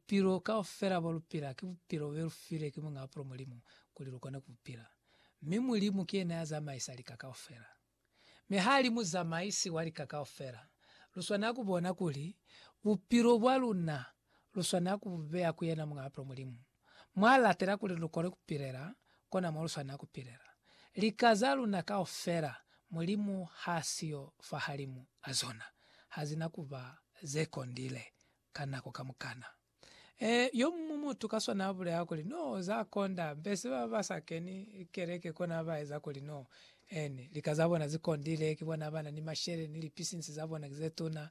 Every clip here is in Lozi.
Bupilo kaufela bo lu pila ki bupilo be lu filwe ki Muñ'a Bupulo Mulimu kuli lu kone ku bu pila. Mi Mulimu ki yena ya zamaisa lika kaufela. Mi ha li Muzamaisi wa lika kaufela, lu swanela ku bona kuli bupilo bwa luna lu swanela ku bu beya ku yena Muñ'a Bupulo Mulimu, mw'a latela kuli lu kone ku pilela kona mo lu swanela ku pilela. Lika za luna kaufela Mulimu ha siyo fahalimu a zona ha zi na ku ba ze kondile. ka nako kamukana. Ee, yomuñwi mutu ka swana abulela kuli, No, za konda, mbese baba ba sa keni keleke kona ba eza kuli no ene. Lika za bona zi kondile, ki bona bana ni mashele, ni lipisinsi za bona ki ze tuna.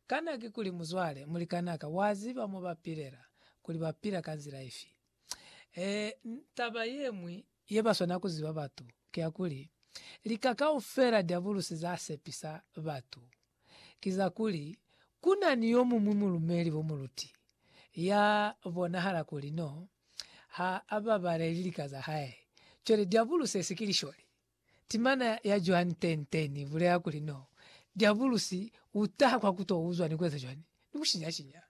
Kana kikuli, muzwale, mulikanaka, wa ziba mo ba pilela, kuli ba pila ka nzila ifi? Taba yeñwi yebaswanela kuziba batu kiyakuli, lika kaufela Diabulusi zasepisa batu ki za kuli, Kuna ni yomuñwi mulumeli bo muluti ya bonahala kuli no ha ababaleli lika za hae. Cwale Diabulusi esi ki lisholi. Timana ya cwani tente ni bulela kuli no, Diabulusi u taha kwa ku to uzwa ni ku eza cwani? Ni ku shinya-shinya.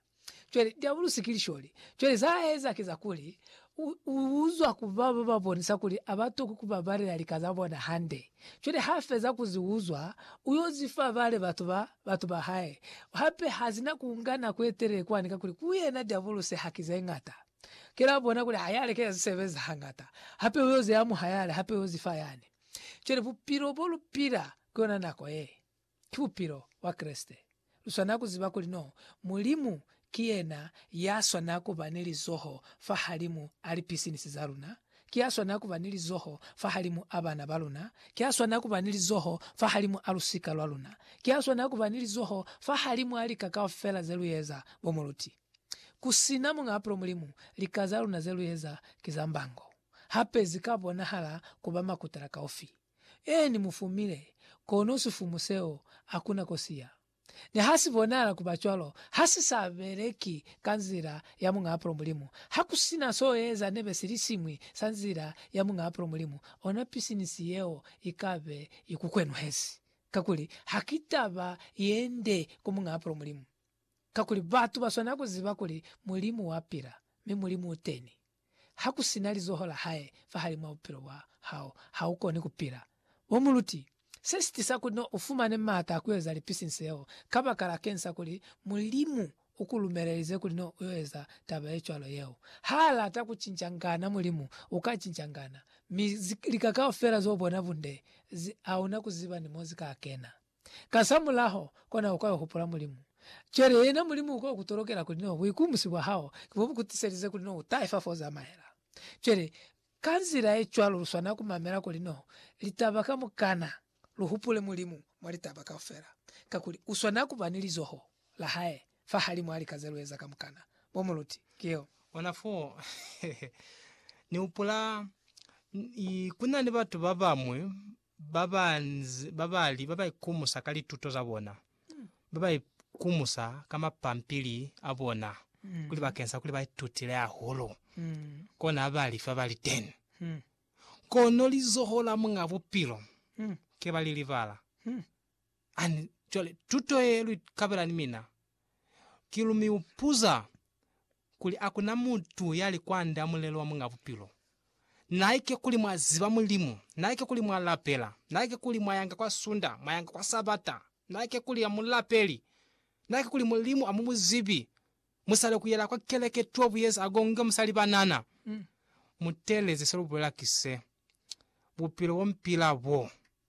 Cwale, Diabulusi ki lisholi. Cwale za a eza ki za kuli, u, u uzwa ku ba ba ba bonisa kuli a ba tokwi ku babalela lika za bona hande. Cwale ha feza ku zi uzwa, u yo zi fa bale batu ba, batu ba hae. Hape ha zina ku nga nako ye telele kwani kakuli ku yena Diabulusi ha ki ze ñata. Ki la bona kuli hayale ke ya zisebezi hangata, hape uyo zi amuha yale, hape uyo zifa yani. Cwale bupilo bo lu pila ku yona nako ye, ki bupilo bwa Kreste. Lu swanela ku ziba kuli no Mulimu ki yena ya swanela ku ba ni lizoho fahalimu a lipisinisi za luna, ki ya swanela ku ba ni lizoho fahalimu a bana ba luna, ki ya swanela ku ba ni lizoho fahalimu a lusika lwa luna, ki ya swanela ku ba ni lizoho fahalimu a lika kaufela ze lu eza, bo mu luti. Ku si na muñ'a pulo Mulimu, lika za luna ze lu eza ki za mbango. Hape zi ka bonahala ku ba makutala kaufi. Eeni, mu fumile, kono sifumu seo ha ku na ko si ya. Ni ha si bonahala ku ba cwalo, ha si sa beleki ka nzila ya muñ'a pulo Mulimu. Ha ku si na s'o eza nebe sili siñwi sa nzila ya muñ'a pulo Mulimu, ona pisinisi yeo i ka be i ku kwenuhezi, kakuli ha ki taba ye nde ku muñ'a pulo Mulimu. Kakuli batu ba swanela ku ziba kuli Mulimu wa pila, mi Mulimu u teni. Ha ku si na lizoho la hae fahalimw'a bupilo bwa hao, ha u koni ku pila. Bo muluti, se si tisa kuli n'o u fumane m'ata a ku eza lipisinsi yeo, kabakala keñi sa kuli Mulimu u ku lumelelize kuli n'o u yo eza taba ye cwalo yeo. Ha a lata ku cincangana Mulimu, u ka cincangana. Mi lika kaufela z'o bona bunde, zi, hauna ku ziba ni mo zi ka kena. Kasamulaho, kona uka yo hupula Mulimu. Cwale yena Mulimu uka yo ku tolokela kuli no buikumusi bwa hao ki bo bu ku tiselize kuli no u tahe fa fo u zamaela. Cwale, ka nzila ye cwalo lu swanela ku mamela kuli no litaba kamukana, lu hupule Mulimu mwa litaba kaufela, kakuli u swanela ku ba ni lizoho la hae fahalimw'a lika ze lu eza kamukana. Bo muluti, ki yo. Ona fo ni hupula, ku na ni batu ba bañwi ba ba nze ba ba li ba ba ikumusa ka lituto za bona, ba ba ikumusa ka mapampili a bona kuli bakeng sa kuli ba itutile hahulu. Kona ha ba li fa ba li ten. Kono lizoho la Muñ'a Bupilo ke ba li libala. Ani, cwale tuto ye lu ikabela ni mina, ki lu mi upuza kuli akuna mutu ya li kwand'a mulelo wa Muñ'a Bupilo. Naike kuli mwa ziba Mulimu, naike kuli mwa lapela, naike kuli mwa yanga kwa Sunda, mwa yanga kwa Sabata, naike kuli a mu lapeli, naike kuli Mulimu a mu mu zibi, mu sale ku yela kwa keleke two buyeza a gonge mu sa li banana. Mu teeleze se lu bulela ki se, Bupilo bo mpila bo.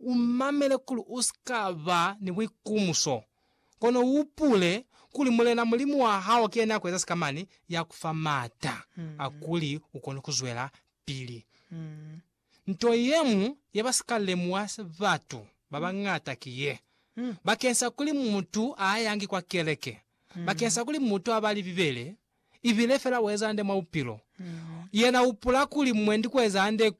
Umamele kuli usika ba ni buikumuso, kono uhupule kuli Mulena Mulimu wahao ki yena yakueza sikamani, yakufa maata akuli ukone kuzwelapili. Nto yeñwi yeba sika lemuha batu babañata ki ye, bakeng sa kuli mutu aayangi kwa keleke, bakeng sa kuli mutu abali Bibele, ibile fela ueza hande mwa bupilo, yena uhupula kuli mwendi kueza hande ko